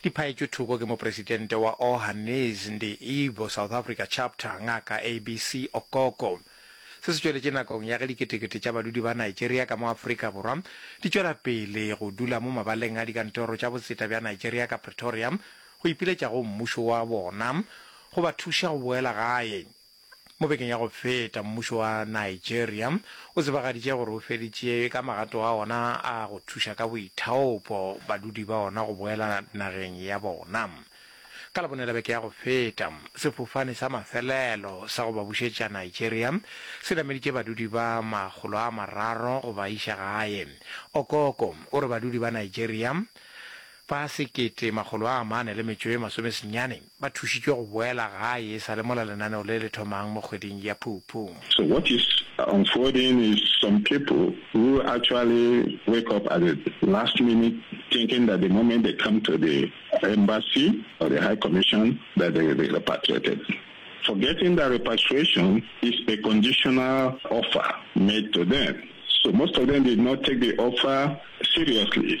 Di phaetšwe thoko ke Mopresidente wa Ohani's Ndi Igbo South Africa Chapter, Ngaka ABC Okoko. Se se tšweletše nakong ya ge diketekete tša badudi ba Nigeria ka mo Afrika Borwa di tšwela pele go dula mo mabaleng a dikantoro tša botseta bja Nigeria ka Pretoria go ipiletša go mmušo wa bona go ba thuša go boela gae. Mo bekeng ya go feta, mmušo wa Nigeria o tsebagaditše gore o feditše ka magato a ona a go thuša ka boithaopo badudi ba ona go boela nageng ya bona. Ka Labone la beke ya go feta, sefofane sa mafelelo sa go ba bušetša Nigeria se nameditše badudi ba makgolo a mararo go ba iša gae. Okoko o re badudi ba Nigeria Ba sekete makgolo a mane le metšo e masome senyane ba thušitšwe go boela gae e sa le mola lenaneo le le thomang mo kgweding ya Phupu. So what is unfolding is some people who actually wake up at the last minute thinking that the moment they come to the embassy or the high commission that they will be repatriated forgetting that repatriation is a conditional offer made to them so most of them did not take the offer seriously.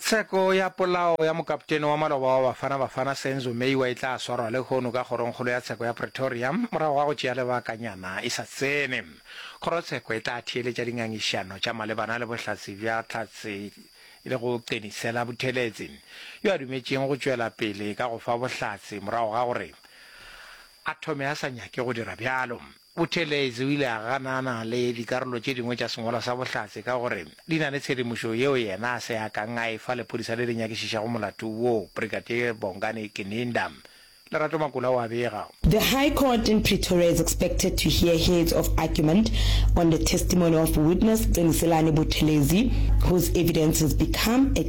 Tsheko ya polao ya mokaptene wa maloba wa Bafana Bafana, Senzo Meyiwa e tla swarwa lehono ka kgorongkgolo ya tsheko ya Pretoria morago ga go tšea lebakanyana e sa tsene. Kgorotsheko e tla theeletša dingangišano tša malebana le bohlatse bja Tlhatse le go Qenisela Buthelezi, yo a dumetšeng go tšwela pele ka go fa bohlatse morago ga gore a thome a sa nyake go dira bjalo. Buthelezi o ile a ganana le dikarolo tše dingwe tša sengwalwa sa Bohlatse ka gore di na le tshedimošo yeo yena a se a kang a e fa lephodisa le le nyakišišago molato wo, Brigadier Bongani Gininda. Lerato Makula o a bega. The High Court in Pretoria is expected to hear heads of argument on the testimony of witness Qiniselani Buthelezi, whose evidence has become a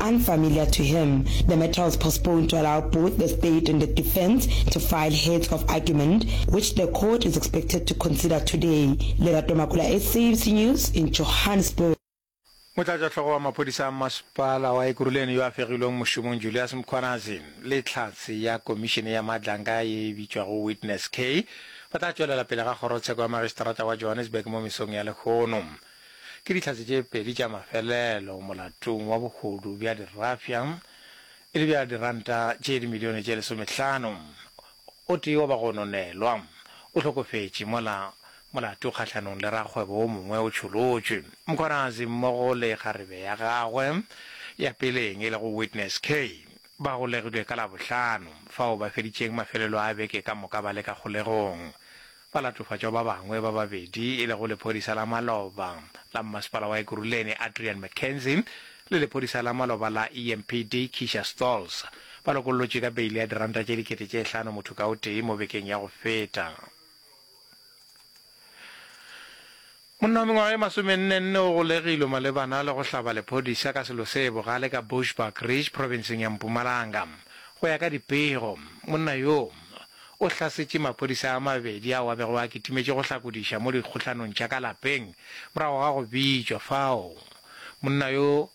Unfamiliar to him, the matter was postponed to allow both the state and the defence to file heads of argument, which the court is expected to consider today. Lerato Makula, SABC News, in Johannesburg. Motlatšahlogo wa maphodisa a Mmasepala wa Ekurhuleni yo a fegilweng mošomong Julias Mkhwanazi le Tlhatse ya Komišene ya Matlanga ye e bitšwago Witness K ba tla tšwelela pele ga Kgorotsheko ya Magistrata wa Johannesburg mo mesong ya lehono. Ke dihlatse tše pedi tša mafelelo molatong wa bohodu bja dirafya e le bja diranta tše dimilione tše lesomehlano. O tee wa bagononelwa o hlokofetše mola molato kgahlanong le rakgwebo wo mongwe o tšholotšwe. Mkhwanazi mmogo le kgarebe ya gagwe ya peleng e lego Witness Kay ba golegilwe ka Labohlano fao ba feditšeng mafelelo a beke ka moka ba le ka kgolegong. Ba latofatšwa ba bangwe ba babedi e lego lephodisa la maloba la mmasepala wa Ekurhuleni Adrian McKenzie le lephodisa la maloba la EMPD Keisha Stolz ba lokollotšwe ka beile ya diranta tše dikete tše hlano motho ka o tee mo bekeng ya go feta. Monna wa mengwaga e masomenne-nne o golegilwe malebana le go hlaba lephodisa ka selo se bogale ka Bushbuckridge, profenseng ya Mpumalanga. Go ya ka dipego, monna yo o hlasetše maphodisa a mabedi ao a bego a kitimetše go hlakodiša mo dikgohlanong tša ka lapeng morago ga go bitšwa fao monna yo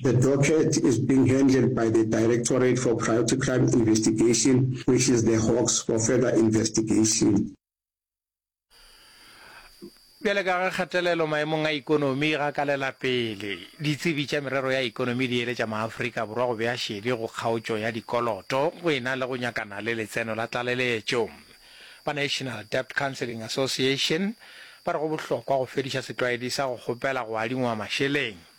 The docket is being handled by the Directorate for Priority Crime Investigation which is the Hawks for further investigation. Bjale ka ge kgatelelo maemong a ekonomi e gakalela pele, ditsebi tša merero ya ekonomi di eletša maAfrika Borwa go bea šedi go kgaotšo ya dikoloto go e na le go nyakana le letseno la tlaleletšo. Ba National Debt Counselling Association ba re go bohlokwa go fediša setlwaedi sa go kgopela go adingwa mašeleng.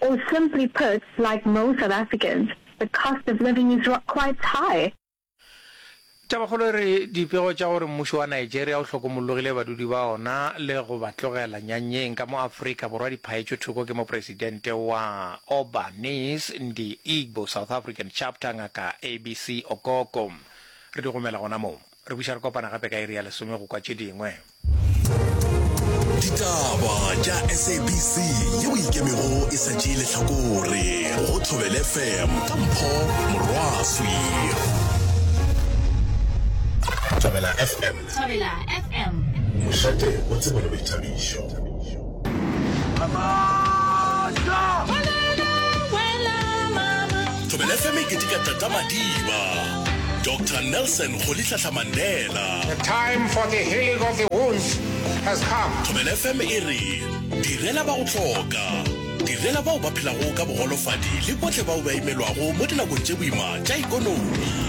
Or simply put, like most South Africans, the cost of living is quite high. Tabakgolo e re dipego tša gore mmušo wa Nigeria o hlokomollogile badudi ba ona le go ba tlogela nyanyeng ka mo Afrika Borwa di phaetšwe thoko ke mopresidente wa Obanese Ndi Igbo South African Chapter Ngaka ABC Okoko. Re di gomela gona moo. Re buša re kopana gape ka iri ya lesome go kwa tše dingwe. Ditaba tša SABC yeo e ikemego e sa tšee lehlakore go Thobel FM ka Mpho Morwaswi. Thobela FM. Thobela FM. Mošate o tsebolo boithabišo. Thobela FM e ketika Tata Madiba, Doctor Nelson Rolihlahla Mandela. The time for the healing of the wounds has come. Thobela FM e re, Direla ba go hloka, direla bao ba phelago ka bogolofadi le bohle bao ba imelwago mo dinakong tše boima tša ikonomi.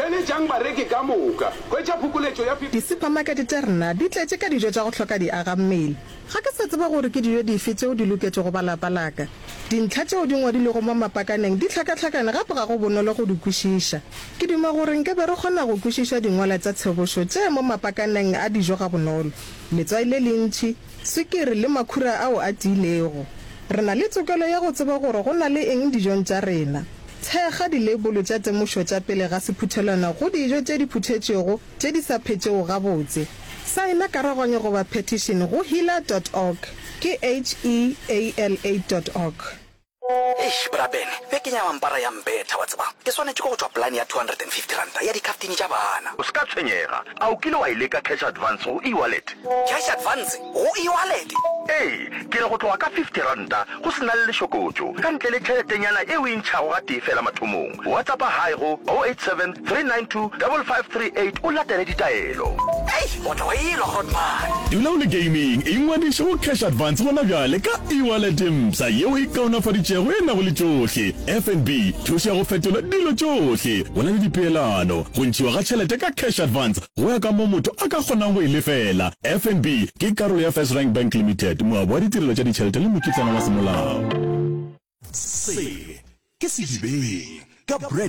Theeletšang bareki ka moka. Hwetša phokoletšo ya 50. Disupamakete tša rena di tletše ka dijo tša go hloka diagammele. Ga ke sa tseba gore ke dijo dife tšeo di loketšego ba lapa la ka. Dintlha tšeo di ngwadilwego mo mapakaneng di hlakahlakane gape ga go bonolo go di kwešiša. Ke duma gore nke be re kgona go kwešiša dingwala tša tshobošo tše mo mapakaneng a dijo gabonolo, letswai le lentši, swikiri le makhura ao a tiilego. Re na le tokelo ya go tseba gore go na le eng dijong tša rena. Thekga dileibolo tša temošo tša pele ga sephuthelwana go dijo tše di phuthetšwego tše di sa phetšego gabotse. Saena karogwanyo goba petition go heala dot org, ke H-E-A-L-A dot org. Eish bra Ben, bekeng ya mampara ya mbetha wa tseba. Ke swanetše ke go tšwa plan ya R250 ya dikhaftine tša bana. O se ka tshwenyega. A o kile wa e leka cash advance go e-wallet? Cash advance? Go e-wallet? Ee, ke re go tloga ka fifty ranta go se na le lešokotšo, ka ntle le tšheletenyana e o e ntšhago gatee fela mathomong. Whatsappa Hi go 0873925538 o latele ditaelo. Hei, o tlo e lwa Grootman. Dula o le gaming, ingwadiše go Cash Advance gona bjale ka e-wallet e mpsha ye o e kaonafaditšego e nago le tšohle, FNB, thušo ya go fetola dilo tšohle, go na le dipeelano, go ntšhiwa ga tšhelete ka Cash Advance, Go ya ka mo motho a ka kgonang go e lefela, FNB ke karolo ya First Rank Bank Limited, moabi wa ditirelo tša ditšhelete le mokitlana wa semolao. Se ke sedibeng ka Brad.